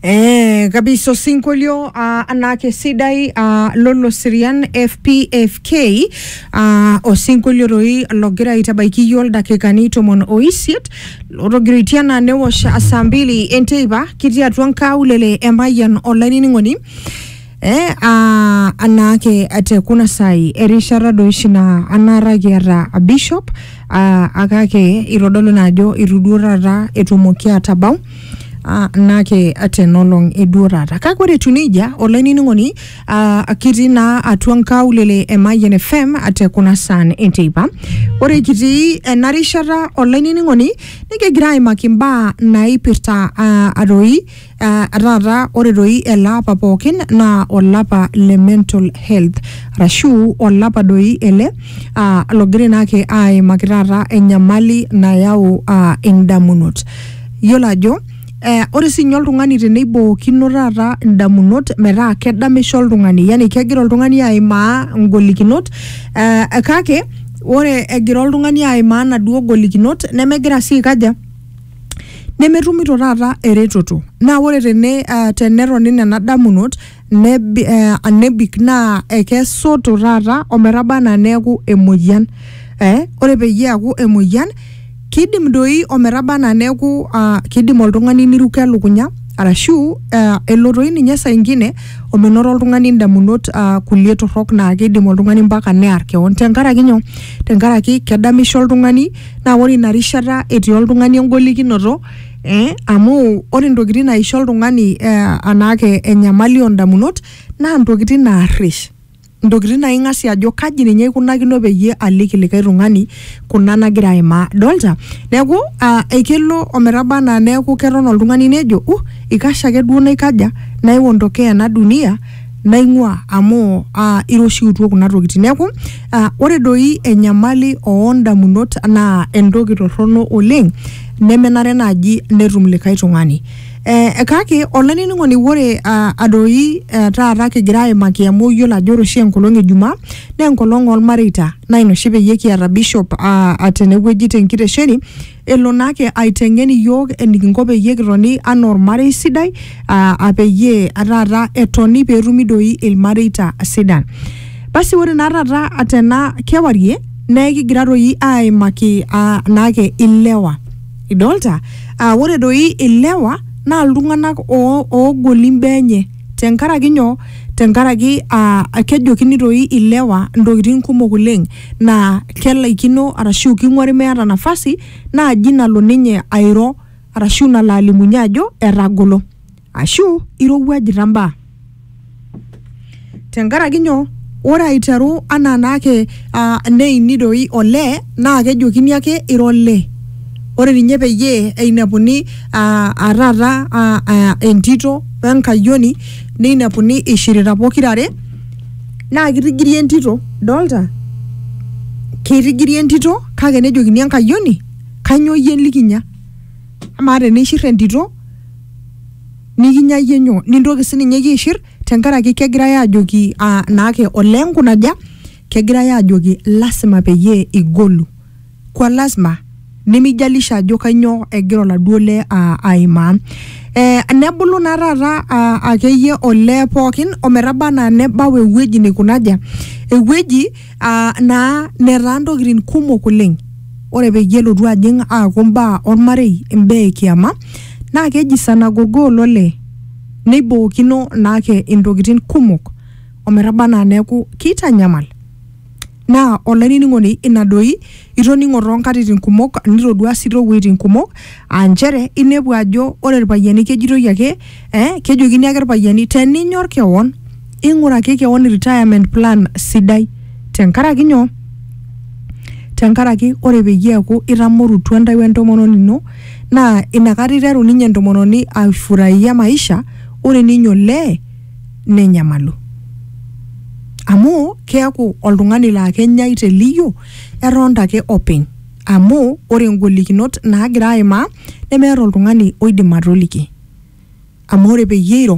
Eh, kabiso sinkolio ah, anake sidai ah, lolo sirian fpfk ah, osinkolio roi logira aitabaiki yiok ildakikani tomon oisiet lotogiritia naa newosh saa mbili enteipa kitii atua nkaulele emayian olainining'oni Eh, ah, anaake te kuna sai erishata doi oshi naa anaata kiata a bishop ah, akake itodolu naa ajo itu duo taata etumoki atabau ah, naake tenolong eduo taata kake ore etiu nejia olainining'oni ah, kitii naa atua nkaulele e Mayian FM te kuna saan enteipa ore kitii ena rishata olainining'oni nikigira aimaki imbaa naipirta ah, atoi Uh, taata ore doi ele apa pookin naa olapa le mental health arashu olapa doi ele uh, logira naa ake aimaki taata enyamali nayau uh, indamunot yiolo ajo Eh, ore sinye oltung'ani teneibookino taata indamunot metaa kedamisho oltung'ani yani kegira oltung'ani aimaa ngolikinot eh, kake ore egira oltung'ani aimaa naduo golikinot nemegira sii aikaja nemetumito taata eretoto naa ore tene uh, tenetoni nena damunot nebi, uh, nebik naa ekesoto taata ometaba anaa neeku emoyian eh, ore peyie eaku emoyian kidim doi ometaba anaa neeku uh, kidim oltung'ani niruko elukunya arashu uh, elo toi ninye saa ingine omenoto oltung'ani indamunot uh, kulie torrok naa kidim oltung'ani mpaka near kewon tenkaraki nyoo tenkaraki kedamisho oltung'ani naa ore ina rishata etii oltung'ani engolikinoto eh, amu ore intokitin naisho oltung'ani eh, anaake enyamali ondamunot naa intokitin naarrish intokitin naa ing'asie ajo kaji ninye aikunakino peyie aliki likae tung'ani kuna nagira aimaa dolta neeku uh, ekelo ometaba anaa neeku keton oltung'ani nejo uh ikash ake duo naikaja naiondokea ena dunia naing'ua amu uh, iroshiutuo kuna tokitin neeku uh, ore doi enyamali oondamunot naa entoki torrono oleng nemenare naaji netum likae tung'ani eh, kake olainining'oni ore uh, adoi uh, taata kigira aimaki amu iyiolo ajo ore oshi enkolong ejumaa naa enkolong olmareita naa ina oshi peyie kiata bishop uh, tenewueji tenkitesheni elo naa ake aiteng'en iyiook enikinko peyie kitoni anaa ormarei sidai aa aa peyie taata etoni peetumi doi ilmareita sidan. Basi ore naa taata tena kewarie naa ekigira doi aaimaki aa naake ilewa. Idolta? Aa ore doi ilewa naa iltung'anak oo oogoli imbaa enye tenkaraki nyoo? Tenkaraki aa kejokini doi ilewa intokitin kumok oleng'. naa kelaikino arashu king'uari meeta nafasi naaji nalo ninye airo arashu nalo alimunye ajo etagolo ashu irowuajita mbaa tenkaraki nyoo ore aiteru anaa naake uh, neini doi olee naa kejokini ake ira olee ore ninye peyie einepuni uh, taata uh, uh, entito wenkayioni neinepuni ishirita pokirare naa kitigiri entito dolta kitigiri entito kake nejokini enkayioni kanyoo iyie likinya amaa teneishir entito nikinya iyie nyoo nintoki sininye iyie aishir tenkaraki kegirae ajoki uh, naake olee nkunaja kegirae ajoki lasima peyie igolu kwa lasima nemijalisha ajo kainyoo egira oladuo lee aa- aimaa eh, nebulu naa taata aa, akeyie olee pookin ometaba anaa nebau ewueji neikunaja ewueji aa, naa netaa ntokitin kumok oleng ore peyie elotu ajing aaku mbaa ormarei imbaa ekiama naa keji sana gogo olole neibookino naake intokitin kumok ometaba anaa neeku keitanyamal Naa, olainining'oni, ina doi itoning'o too nkatitin kumok nitoduaa sii too wueitin kumok aa nchere inepu ajo ore ilpayiani kejitoi ake ee kejokini ake ilpayiani teninyor kewon ing'uraki kewon retirement plan sidai tenkaraki nyoo? Tenkaraki ore peyie eeku itamorutua intae we ntomononi ino naa inakata iteru ninye entomononi aifuraia maisha ore ninye olee nenyamalu amu keaku oltung'ani laa kenyai te liyio etonta ake openy amu ore ingolikinot naagira aimaa nemeeta oltung'ani oidim atoliki amu ore peyie eiro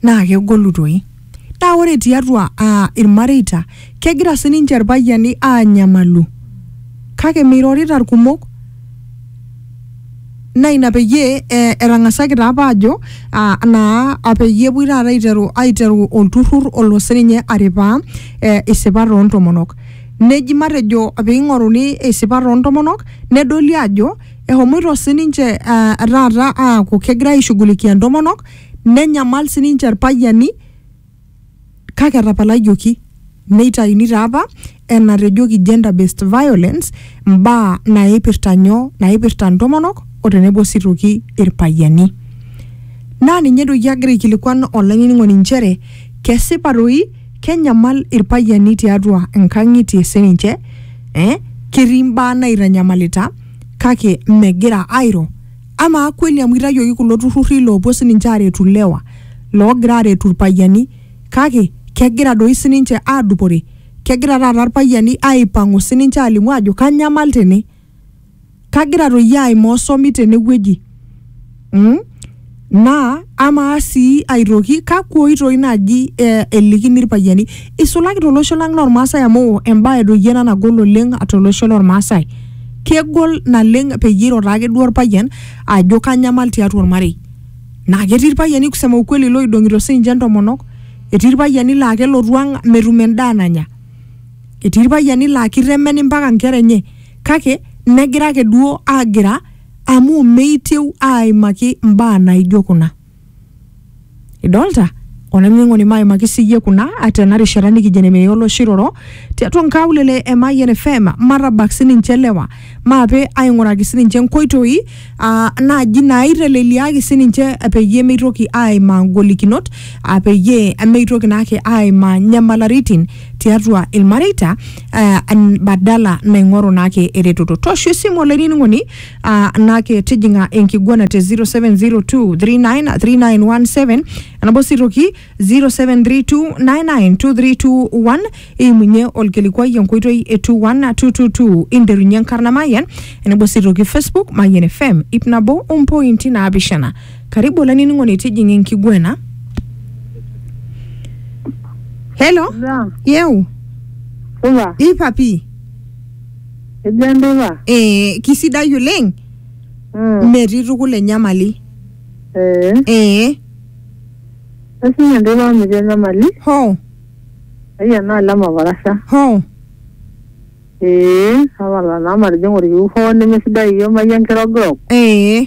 naa kegolu toi naa ore tiatua uh, irmareita kegira sininche irpayiani anyamalu kake meirorita irkumok naa ina peyie eh, etang'asaki taa apa ajo ah, naa ah, peyie epuoi taata aiteru aiteru olturrur olo sininye aripaa eh, isipat oontomonok neji matejo piing'oruni isipat oontomonok nedoli ajo ehomoito sininche ah, taata aaku kegira aishughulikia intomonok nenyamal sininche irpayiani kake etapalayoki neitayuni taa apa enatejoki gender based violence mbaa naipirta nyoo naipirta ntomonok o tenebo sii toki irpayiani naa ninye edoki agira aikilikuan olainining'oni nchere kesipa toi kenyamal irpayiani tiatua nkang'itie sininche eh, ketii mbaa naitanyamalita kake megira airo amaa kweli amu itayioki kulo turrurri loopuo sininche aaretu ilewa loogira aaretu irpayiani kake kegira doi sininche aadupore kegira taata irpayiani aipang'u sininche aalimu aajo kanyamal tene kagira toi aimaa osomi tenewueji mm? naa amaa sii aitoki kakwa oitoi naaji eh, elikini irpayiani Isulaki tolosho lang lormaasai amu embae doi ena nagol oleng tolosho lormaasai. Kegol naleng peyie iro taake duo orpayian ajo kanyamal tiatua ormarei. Naa ketii irpayiani kusema ukweli loidong'ito siininche intomonok, etii irpayiani laa kelotu ang metum endaa nanya, etii irpayiani laa kitemen mpaka inkera enye kake negira ake duo agira amu meitieu aaimaki imbaa naijo kuna. idolta olainining'oni maimaki siyie kuna tena rishata nikijo nemeye oloshiroro tiatua nkaulele e Mayian FM matabak sininche lewa maape aing'uraki sininche nkoitoi aa naaji naaiteleliaki sininche peyie meitoki aimaa ngolikinot aa peyie meitoki naake aimaa nyamalaritin tiatua ilmareita eh, an- badala naing'oru naake eretoto tosho esimu olainining'oni Uh, nake tijing'a enkiguana te 0702393917 enabo sii toki 0732992321 eimunye olkilikuai enkoitoi e 21222 interunye enkarna mayian enebo sii toki facebook mayian fm ip nabo ompointi naapishana karibu olainining'oni tijing'a enkiguana helo Yeah. yeu Ula. ipapi Ejo enteipa? ee kisidai oleng Mm. metii tukul enyamali Ee. ee Aishinye enteipa amu metii enyamali. hoo Ai ena alem oparasha. hoo Ee. Tapala naa matijing'a olkiu hoo nemesidai iyie imayie enkirogirog. ee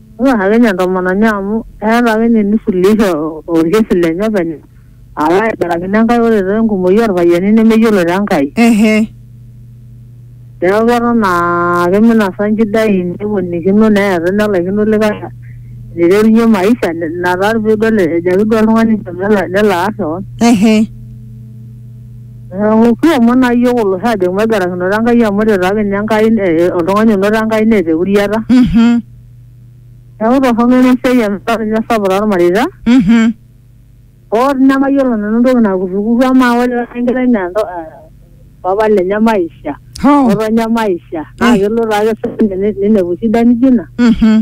Etua ake ninye entomononi amu eeta ake ninye eneisuluhisha olkesi lenye openy alo aigurakino Enkai ore taa enkumoi olpayiani nemeyiolo taa Enkai. Ehe. Neeku keton aa keminasa inchidai neponikino neeta enelaikino likae eneiterunye maisha ina taa pee idol ejo ake duo oltung'ani nchoo nelo aar keon. Ehe. Eng'oki omon aa iyiook olosho aajoki maigarakinoto Enkai amu ore taake ninye Enkai eh, eh, oltung'ani onoto Enkai neeta euriata. Mhm. Neeku torrono ina siai amu etaa ninye sapuk tormareita. Mhm. Hoo dii nemayiolo nanu entoki nakurrukurru amaa ore taata enkerai naa ento- eh, papa lenye maisha, Hoo. ng'otonye maisha naa kelo taake sininye ne- ninepu shida nijo ina. Mhm.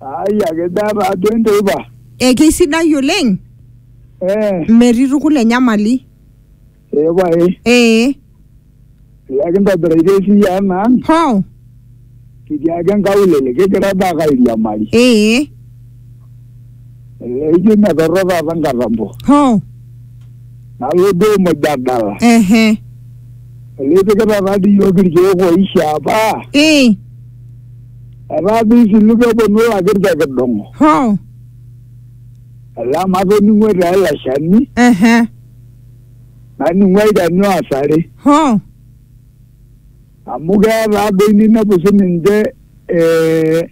Ai ake daa taa duo enteipa. Eh, keisidai oleng. Eh. Metii tukul enyamali. Ee pae. Eh. Iyaki ntobiraita esiai ang ang. Hoo. Kitii ake nkaulele kigira daa ake airiamari. Eh. Elee ijo metorro taata nkatampo. Hoo. Nalo duo muj adala. Ehe. Elee ipikita taa dii iyiok irkeek oishaa apa. Eh. Etaa pii isilu pee eponu ilakir te kidong'o. Hoo. Etaa amu atoning'o etaa ele shani, Ehe. naning'u olchani oasare. Hoo. Amu keya taa doi ninepu sii ninche eh,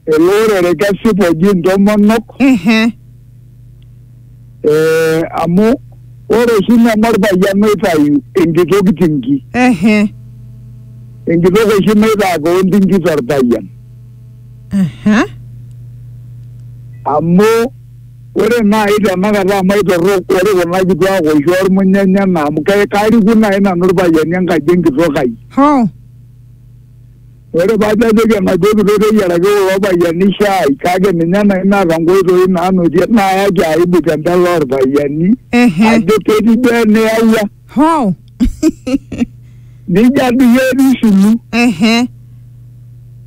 ele orere kesipa oji intomonok. Ehe. Eh, amu ore oshi neme orpayian oitayu enkitok tinki ehe enkitok oshi naitaa kewon tinki torpayian aha amu ore naaji tenakata amu aitorrok ore kuna kituak oshi ormunyanya ena amu ke- kariku naaji nanu irpayiani enkaji enkitok ai hoo Ore pee ajoki enaduo kitok teyiaraki kulo payiani shaai kake ninye nai naata nkoitoi naanotie naayaki aibu te mbele oorpayiani Ehe. ajo ketii duo eniyawua Hoo. nija duo etii sulu Ehe.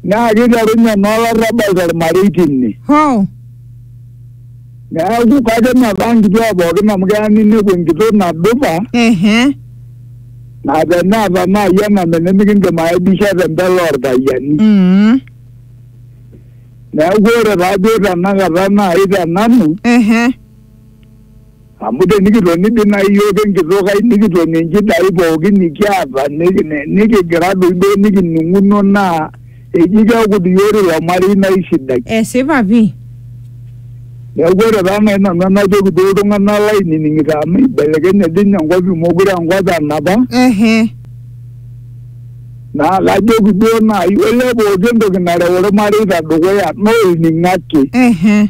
naa kiterunye naa olarrabal tormarei tine. Hoo. Neeku kake metaa nkituak pookin amu keya ninepu enkitok nadupa Ehe. naa teneeta naaji ename nimikindim aidisha tembele orpayiani Mm. neeku ore taaduo tenakata naaji tenanu Ehe. amu tenikitoni dii naaji iyiook enkitok ai nikitoni inchidai pookin nikiata niki- ni- nikigira doi duo nikining'uno naa eji keeku diyiori ilo marei naisidai. esipa pii Neeku ore taa nai nanu enajoki duo iltung'anak lainining'ito amu ibelekenye dii ninye enkop mekure aa enkop enapa ehe naa kajoki duo nai olee pooki entoki nareu irmareita dukuya naa olning'o ake. ehe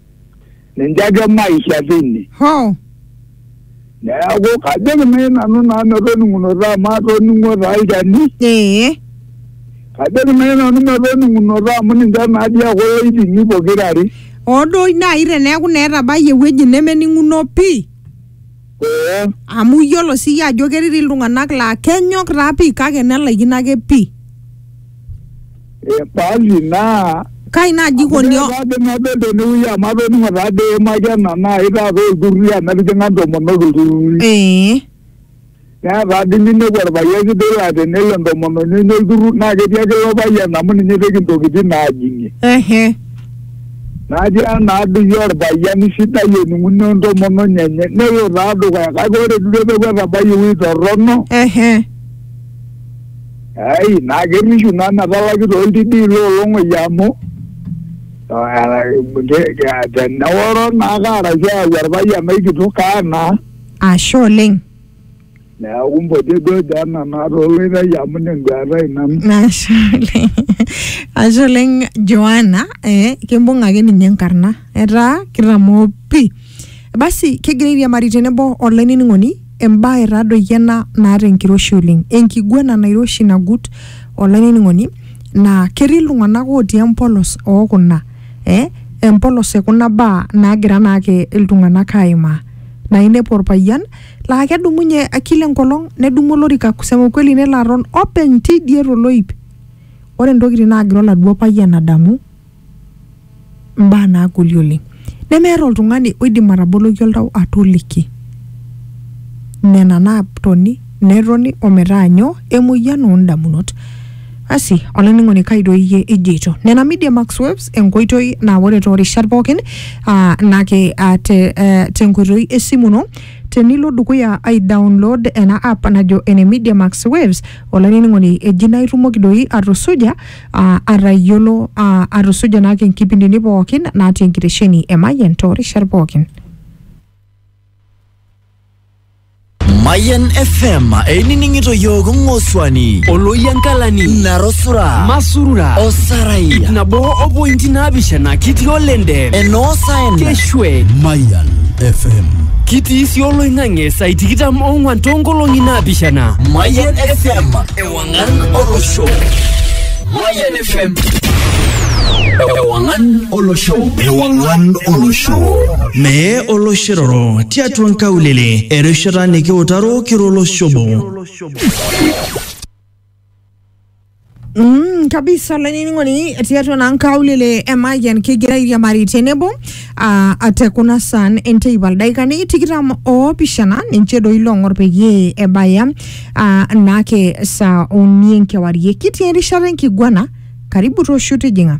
ninche ake maisha teine. Hoo. Neeku kajoki nai nanu naa metoning'unoto amu atoning'o taa olchani. Ee. Kajoki nai nanu metoning'unoto amu ninche naa dii ake oloitimi pokira are. Hoo duo nai teneeku naa etabayie ewueji nemening'uno pii. Ee, amu iyiolo siyie ajo ketii dii iltung'anak laa kenyok taa pii kake nelaikino ake pii ee, basi naa kai naaji ikoni o- Ore taadoi nadol tenewueji amu atoning'o taadoi eimaki ena naai taata olturruri amu etijing'a intomonok ilturruri. ee Naa taadoi ninepu orpayian sidai laa tenelo entomononi enye olturrur naa ketii ake ilo payian amu ninye ipik intokitin naajing'ie. ehe Natia naaduki olpayiani sidai ening'uno entomononi enye nelo taa dukuya kake ore duo peeku etabayie ewuei torrono Ehe. ai naa kerrishu naa metalaki tooltidii loolong'oi amu teneworo naake arashu eyau orpayian ai kitok kaa naa. Ashe oleng. Neaku mpoti duo dee nena tooloitai amu ina enduata ai nanu. Ashe oleng. Ashe oleng Joana, eh, kimbung ake ninye enkarna. Etaa kitamoo pi. Basi kigira airiamari tenebo olainining'oni embae taa doi ena naata enkiroshi oleng. Enkiguana nairoshi nagut olainining'oni naa ketii iltung'anak otii empolos oo kuna eh, empolos e kuna baa naagira naake iltung'anak aimaa. Naa inepu orpayian laa kedumunye kila enkolong nedumu olorika kusema ukweli nelo aton openy tidie toloip ore ntokitin naagira oladuo payian adamu mbaa naagoli oleng nemeeta oltung'ani oidim ataboloki oltau atoliki nena naatoni netoni ometaa nyoo emoyian oondamunot asi olainining'oni kai doi iyie ijoito nena media max webs enkoitoi naa ore toorishat pookin aa nake aa te, eh, tenkoitoi esimu ino Tenilo dukuya ai download ena app najo ene Media Max Waves olainining'oni eji naa itumoki doi atusuja aa atayiolo aa atusuja naake inkipindini pookin natii enkitesheni e Mayian toorishat pookin. Mayan FM einining'ito yiook ng'osuani Oloyankalani, Narosura Masurura, Osarai ip nabo o pointi naapishana kitii olende. enoo saen Chwed. Mayan FM. Kitii si oloing'ang'e saa tikitam ong'wan toonkolong'i naapishana. Mayan FM. Ewang'an olosho. Mayan FM. Ewang'an olosho. Ewang'an olosho. Mee oloshiroro tiatua nkaulele erishata nikiutaro kiro oloshobo. Mm, kabisa olainining'oni tiatua naa nkaulele e Mayian kigira airiamari tenebo aa ate kuna saan enteipa ildaikani tikitam oopishana ninche doi loong'or peyie ebaya aa naake saa uni enkewarie kitii erishata enkiguana karibu tooshu tijing'a